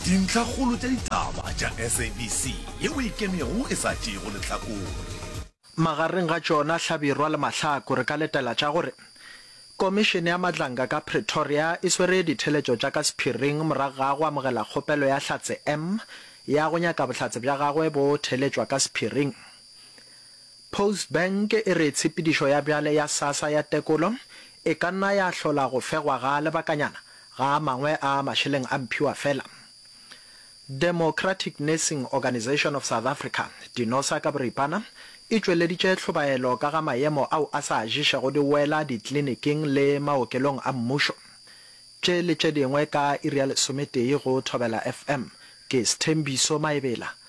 Dintlhakgolo tša ditaba tša SABC ye o e kemego e sa tšeego lehlakore. Magareng ga tšona hlabirwa le mahlaku re ka letela tša gore Komišene ya Matlanga ka Pretoria e swere ditheletšo tša ka sephiring morago ga go amogela kgopelo ya Hlatse M ya go nyaka bohlatse bja gagwe bo theletšwa ka sephiring. Post Bank e re tshepedišo ya bjale ya Sassa ya tekolo e ka nna ya hlola go fegwa ga lebakanyana Ga a mangwe a mašeleng a mphiwa fela. Democratic Nursing Organisation of South Africa, Dinosa ka boripana, e tšweleditše hlobaelo ka ga maemo ao a sa ješego di wela ditliliniking le maokelong a mmušo. Tše le tše dingwe ka iri ya lesometee go Thobela FM. Ke Sthembiso Maebela,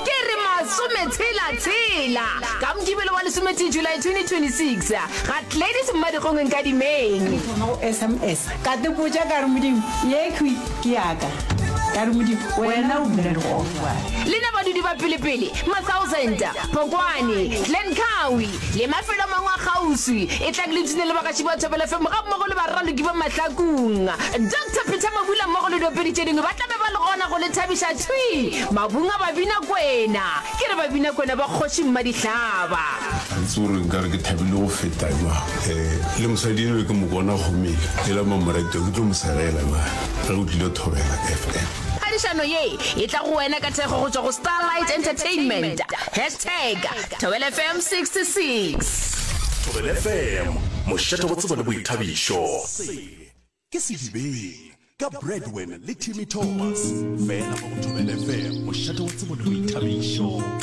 Ke re masometshela-tshela ka Mokibelo wa lesometee July 2026 ga Gladys Mmadikgong Nkadimeng. Ke thoma go sms ka tepotša ka re Modimo yekhwi ke yaka ka re Modimo wena o bula dikgofa. Lena badudi ba Pelepele, Masausenta, Phokwane, Glen Kawi, Le mafelo a mangwe a kgauswi, e tla ke le tune le bagaši ba Thobela FM gammogo le baraloki ba Mahlakung. Doctor Peter Mabula mmogo le diopedi tše dingwe ba tla be ba le gona go le thabiša thwi mabung a Babinakwena. Ke re Babinakwena ba Kgoši Mmadihlaba. Ga itse gore nkare ke thabile go feta jwang. Um le mosadi enwe ke mo bona gomele e la Mamoretwa ke tlo mo segela na ge o tlile Thobela FM. Phadišano ye e tla go wena ka thekgo go tšwa go Starlight Entertainment. Hashtag Thobela FM 66. Thobela FM, mošate go tsebo le boithabišo. Se ke Sedibeng ka Bradwin le Timmy Thomas, fela mo go Thobela FM, mošate go tsebo le boithabišo.